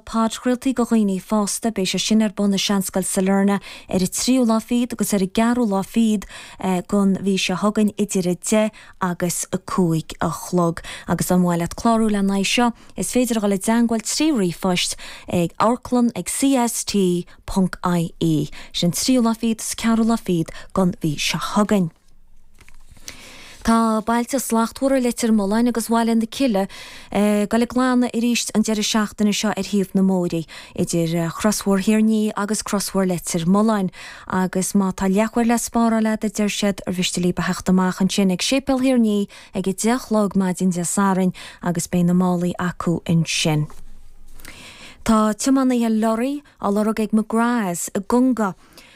Podchraoltaí do dhaoine fásta, Beidh sé sin ar bun i Seanscoil Sailearna ar an tríú lá fiíd agus ar an gceathrú lá fiíd den mhí seo chugainn idir 10 agus 5 a chlog. Agus dá mba mhaith leat clárú le n-aghaidh seo, is féidir a dhul i dteangmháil trí ríomhphost ag amharclann ag CST ponc IE. Sin tríú lá fiíd is ceathrú lá fiíd den mhí seo chugainn. Tá bailte slachtmhara Leitir Mealláin agus Bhaile na Cille ag dul ag glanadh arís an deireadh seachtaine seo ar thaobh na mbóithre, idir chrosbhóthar Thír an Fhia agus crosbhóthar Leitir Mealláin, agus má tá leathuair le spáráil agat, a deir siad, ar mhiste libh a theacht amach ansin ag Séipéal Thír an Fhia ag a deich a chlog maidin Dé Sathairn agus beidh na málaí acu ansin. Tá tiománaithe lorraí á lorg ag McGraths i gConga.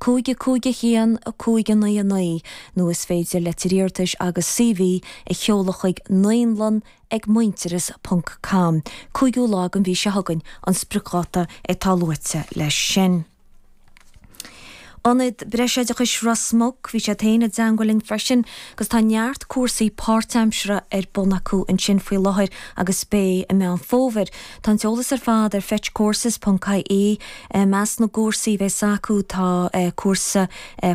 5 5 1 5 9 9 nó is féidir leitir iarratais agus CV a sheoladh chuig naíonlann ag muintearas ponc com, 5ú lá den mhí seo chugainn an spriocdháta atá luaite leis sin. Ionad Breisoideachais Ros Muc, bhí siad féin i dteangmhail linn freisin agus tá neart cúrsaí páirtaimseartha ar bun acu ansin faoi láthair agus beidh i Meán Fómhair Tá an t-eolas ar fad ar fetchcourses ponc ie I measc na gcúrsaí a bheas acu tá cúrsa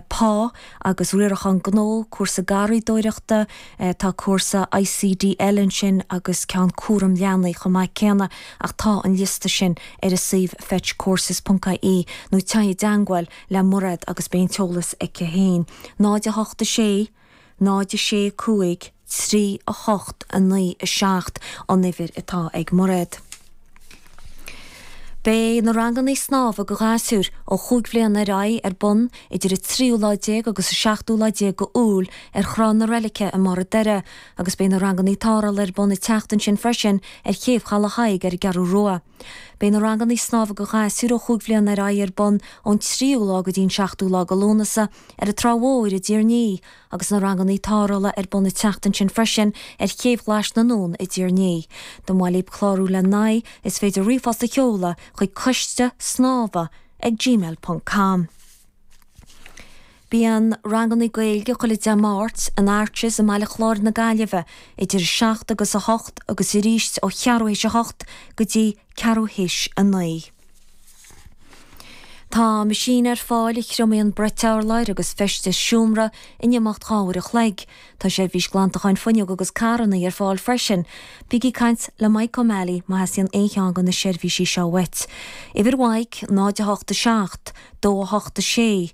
pá agus riarachán gnó, cúrsa garraídóireachta, tá cúrsa ICDL ansin agus ceann cúram leanaí chomh maith céanna ach tá an liosta sin ar a suíomh fetchcourses ponc ie nó téigh i dteangmháil le Mairéad agus beidh an t-eolas aici féin. 0 8 6. 06 5 3 8 9 7 an uimhir atá ag Mairéad. Beidh na ranganna snámha do ghasúir ó chúig bhliana ar aghaidh ar bun idir 13ú lá agus 17ú lá déag de Iúil ar Thrá na Reilige i mBarr an Doire agus beidh na ranganna tarrthála ar bun an tseachtain sin freisin ar Chéibh Chaladh Thaidhg ar an gCeathrú Rua. Beidh na ranganna snámha do ghasúir ó chúig bhliana ar aghaidh ar bun ón tríú lá go dtí an seachtú lá de Lúnasa ar an Trá Mhóir i dTír an Fhia agus na ranganna tarrthála ar bun an tseachtain sin freisin ar Chéibh Ghlais na nUan i dTír an Fhia. Dá mba mhaith libh clárú le n-aghaidh, is féidir ríomhphost a sheoladh chuig coiste snámha ag gmail ponc com. Bíonn ranganna Gaeilge chuile Dé Máirt in Arches i mBaile Chláir na Gaillimhe idir 7 agus 8 agus arís ó cheathrú théis a hocht go dtí ceathrú théis a naoi. Tá meaisín ar fáil a thriomaíonn brait urláir agus feistis seomra in imeacht dhá uair an chloig. Tá seirbhís glantacháin fuinneog agus carrannaí ar fáil freisin. Bígí ag caint le Mike O'Malley má theastaíonn aon cheann de na seirbhísí seo uait. Uimhir Mhaidhc 0 8 7 2 8 6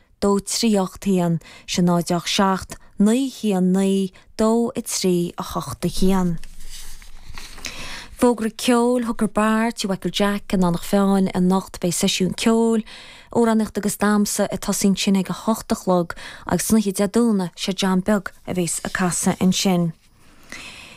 dó trí ocht haon, sé náid a hocht seacht, naoi haon naoi, dó a trí, a hocht a haon. Fógra Ceoil Hooker Bar, Tí Mhichael Jack, in Eanach Mheáin, anocht beidh seisiún ceoil, amhránaíocht agus damsa ag tosí ansin ag a hocht a chlog agus san oíche Dé Domhnaigh sé John Beag a bhéas ag casadh ansin.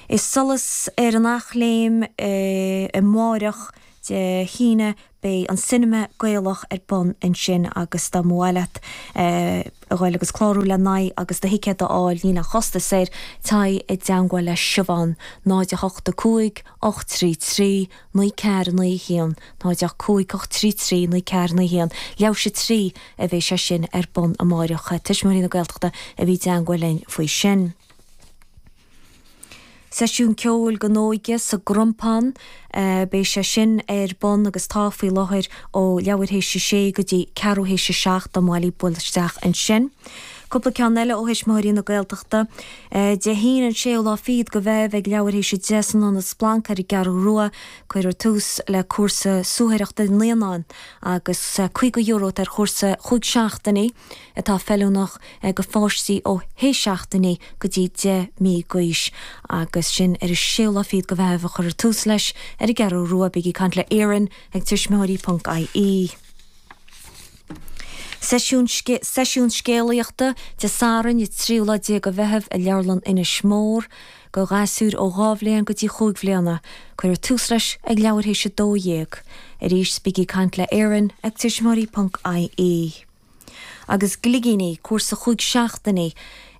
I Solas ar an Eachléim amáireach Dé hAoine Beidh an cinema Gaelach ar bun ansin agus dá mba mhaith leat a dhul agus clárú lena aghaidh agus do thicéad a fháil níl aon chostas air, téigh i dteangmháil le Siobhán, 085 833 9491, 085 833 9491. Leathuair théis a 3 a bheidh sé sin ar bun amáireach. Tuismitheoirí na Gaeltachta a bhí i dteangmháil linn faoi sin. Seisiún ceoil don óige sa gCrompán. Beidh sé sin ar bun agus tá faoi láthair ó leathuair théis a sé go dtí ceathrú théis a seacht dá mba mhaith libh bualadh isteach ansin. Cúpla ceann eile ó Thuismitheoirí na Gaeltachta. Dé hAoine an séú lá fichead de Mheitheamh ag leathuair théis a deich san Ionad Splanc ar an gCeathrú Rua. Cuirfear tús le cúrsa suathaireachta naíonáin agus €50 ar chúrsa chúig seachtainí. atá feiliúnach do pháistí ó shé seachtainí go dtí deich mí d'aois agus sin ar an séú lá fichead de Mheitheamh a chuirfear tús leis ar an gCeathrú Rua. Bígí ag caint le Erin ag tuismitheoirí ponc IE. Seisiún scéalaíochta, Dé Sathairn, 13ú lá de Mheitheamh i Leabharlann Inis Mór. Do ghasúir ó dhá bhliain go dtí chúig bhliana. Cuirfear tús leis ag leathuair théis a dó dhéag. Arís bígí ag caint le Erin ag tuismitheoirí ponc IE. agus gligíní, cúrsa chúig seachtainí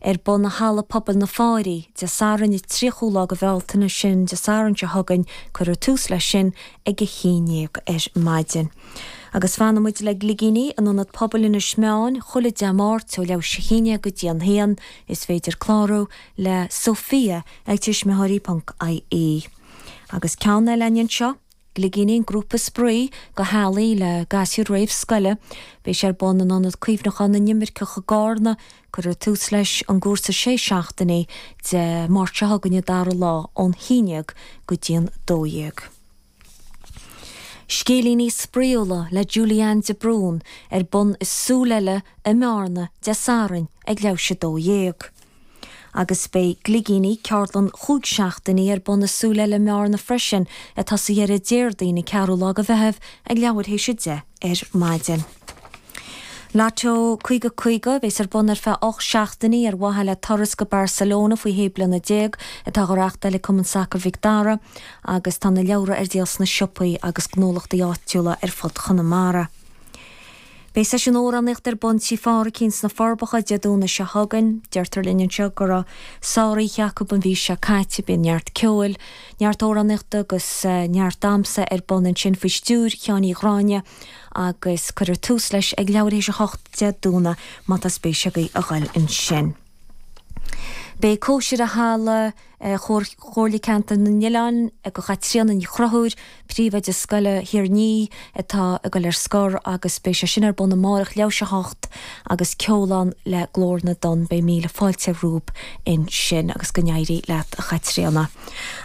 ar bun i Halla Pobail na Fairche, Dé Sathairn 30ú lá de Bhealtaine, sin Dé Sathairn seo chugainn, cuirfear tús leis sin ag a haon dhéag ar maidin. Agus fanfaidh muid le gligíní in Ionad Pobail Inis Meáin chuile Dé Máirt ó leathuair théis a haon déag go dtí an haon, is féidir clárú le Sophia ag tuismitheoirí.ie. Agus ceann eile anseo. Gligíní grúpa spraoi do theaghlaigh le gasúir réamhscoile. Beidh sé ar bun in Ionad Cuimhneacháin na nImirceach i gCarna. Cuirfear tús leis an gcúrsa sé seachtainí, Dé Máirt seo chugainn an dara lá ón 11 go dtí an 12. Scéilíní spraíúla le Julianne de Brún ar bun i Súil Eile i mBearna, Dé Sathairn, ag leathuair théis a 12. Agus beidh Gligíní, ceardlann chúig seachtainí ar bun i Súil Eile i mBearna freisin, ag tosú dheireadh Déardaoin an 4ú lá de Mheitheamh ag leathuair théis a deich ar maidin. Lotto 50 50 a bhéas ar bun ar feadh ocht seachtainí ar mhaithe le turas go Barcelona faoi shé bliana déag atá á reachtáil ag Cumann Sacair Mhic Dara agus tá na leabhra ar díol sna siopaí agus gnólachtaí áitiúla ar fud Chonamara. Beidh seisiún amhránaíochta ar bun Tigh Phádraicín sna Forbacha Dé Domhnaigh seo chugainn. Deirtear linn anseo go raibh sár oíche acu an mhí seo caite. Bíonn neart ceoil, neart amhránaíochta agus neart damsa ar bun ansin faoi stiúir Sheáin Uí Ghráinne agus cuirfear tús leis ag leathuair tar éis a hocht Dé Domhnaigh, má tá spéis agaibh a dhul ansin. Beidh cóisir i Halla Chomhairle Ceantar na nOileán do Chaitríona Ní Chonchúir, Príomhoide Scoil Thír an Fhia, atá ag dul ar scor agus beidh sé sin ar bun amárach leathuair tar éis a 7 agus ceol ann le Glór na dTonn. Beidh míle fáilte romhaibh ansin agus go n-éirí leat a Chaitríona.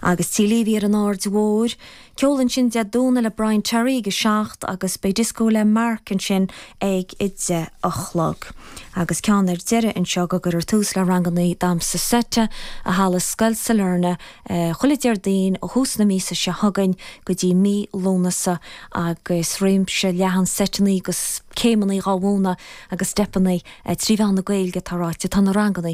Agus Tigh Leavy ar an Aird Mhóir. Ceol ansin Dé Domhnaigh le Brian Terry ag 7 agus beidh dioscó le Mark ansin ag 10 a chlog. Agus ceann ar deireadh anseo go gcuirfear tús le ranganna damsa seite i halla Scoil Sailearna chuile Déardaoin ó thús na míosa seo chugainn go dtí mí Lúnasa agus réimse leathan seiteanna agus céimeanna dhá mhúnadh agus steipeanna trí mheán na Gaeilge atá ráite. Tá na ranganna.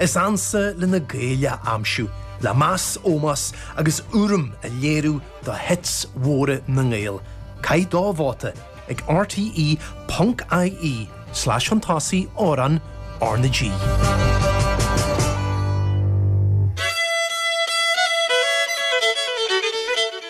Is ansa le na Gaeil a aimsiú, le meas, ómós agus urraim a léiriú do hits mhóra na nGael. Caith do vóta ag rte.ie/fionntásai Amhrán R na G.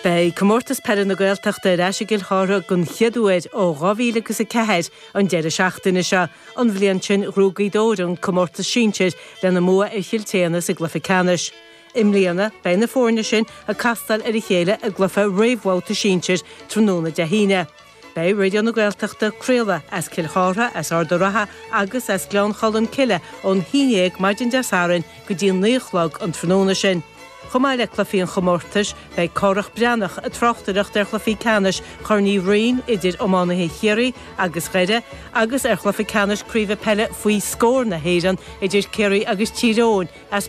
Beidh Comórtas Peile na Gaeltachta ar ais i gCill Chartha den chéad uair ó 2004. An deireadh seachtaine seo, an bhliain sin, ghnóthaigh Gaoth Dobhair an comórtas sinsir lena mbua ar Chill tSéadhna sa gcluiche ceannais. I mbliana, beidh na foirne sin ag castáil ar a chéile i gcluiche réamhbhabhta sinsir tráthnóna Dé hAoine. Beidh Raidió na Gaeltachta ag craoladh as Cill Chartha, as Ard a' Rátha agus as Gleann Cholm Cille ón haon déag maidin Dé Sathairn go dtí a naoi a chlog an tráthnóna sin. Chomh maith le cluichí an chomórtais, beidh Cárthach Breathnach ag tráchtaireacht ar chluiche ceannais Chorn Uí Rinn idir iománaithe Chiarraí agus Dhoire agus ar chluiche ceannais Craoibhe Peile Faoi Scór na hÉireann idir Ciarraí agus Tír Eoghain as